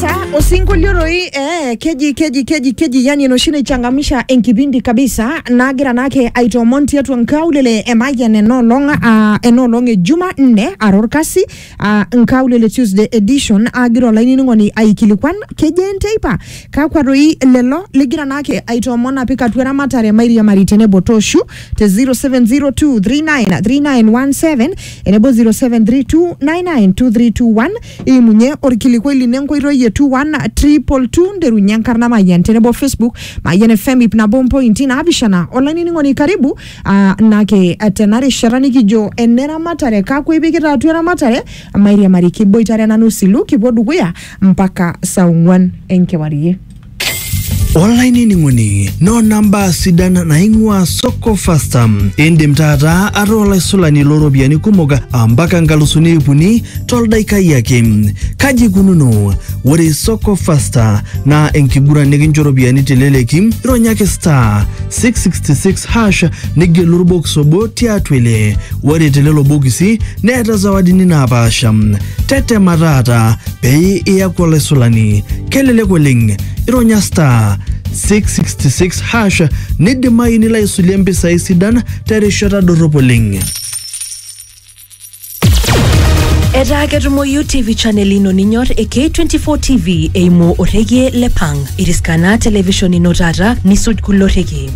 Ta, osinkolio roi eh, keji keji keji keji yani enoshi naichangamsha enkipindi kabisa nagira naake aitoomon tiatua nkaulele emayian enoolong uh, enoolong e juma nne ara orkasi uh, nkaulele tuesday edition agira olainining'oni aikilikuan keji enteipa kakwa roi lelo ligira naake aitoomon apik atua eramatare mairiamari tenebo toshu te 0702393917 enebo 0732992321 imunye orkilikuai lino enkoitoi e 212 nderunye enkarna mayian tenebo facebook mayian fm ip nabo mpointi naapishana olainining'oni karibu ah, nake eh, tena rishata nikijo eneramatare kakwa ipikita atua eramatare mairiamari kiboitare nanu silu kipuo dukuya mpaka saa ong'uan enkewarie olainining'oni noona mbaa sidan naing'ua soko fasta indim taata ataa olaisulani looropiyiani kumok ampaka nkalusuni iip uni toldaikai ake kaji ikununo ore soko fasta naa enkiguran nikincho iropiyiani teleleki ironyaki star 666 hash nigelu orbokis obo tiatua ele ore telelo bokisi neeta zawadini naapaasha tetema taata pee iyaku olaisulani kelelek oleng ironya star 666 hash nidimayu nilo aisulie mpisai sidan terishata dorrop oleng etaa ketumoyu tv channel ino ninyor e k24 tv eimu orrekie le pang iriskana television ino taata nisuj kulo rrekie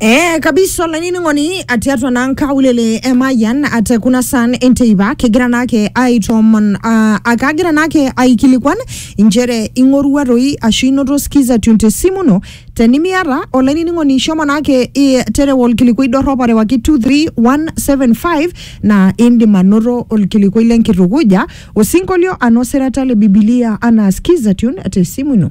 Eh, kabisa olainining'oni atii atua naa nkaulele emayian ate kuna san enteipa kigira naake aitoomon uh, akagira naake aikilikuan inchere ing'orua toi ashu inoto skiza tune tesimu ino tenimiata olainining'oni shomo naake i- terewa olkilikuai dorrop arewaki 23175 naa indim anoto olkilikuai lenkitukuja osinkolio anaa osirata le bibilia anaa skiza tune tesimu ino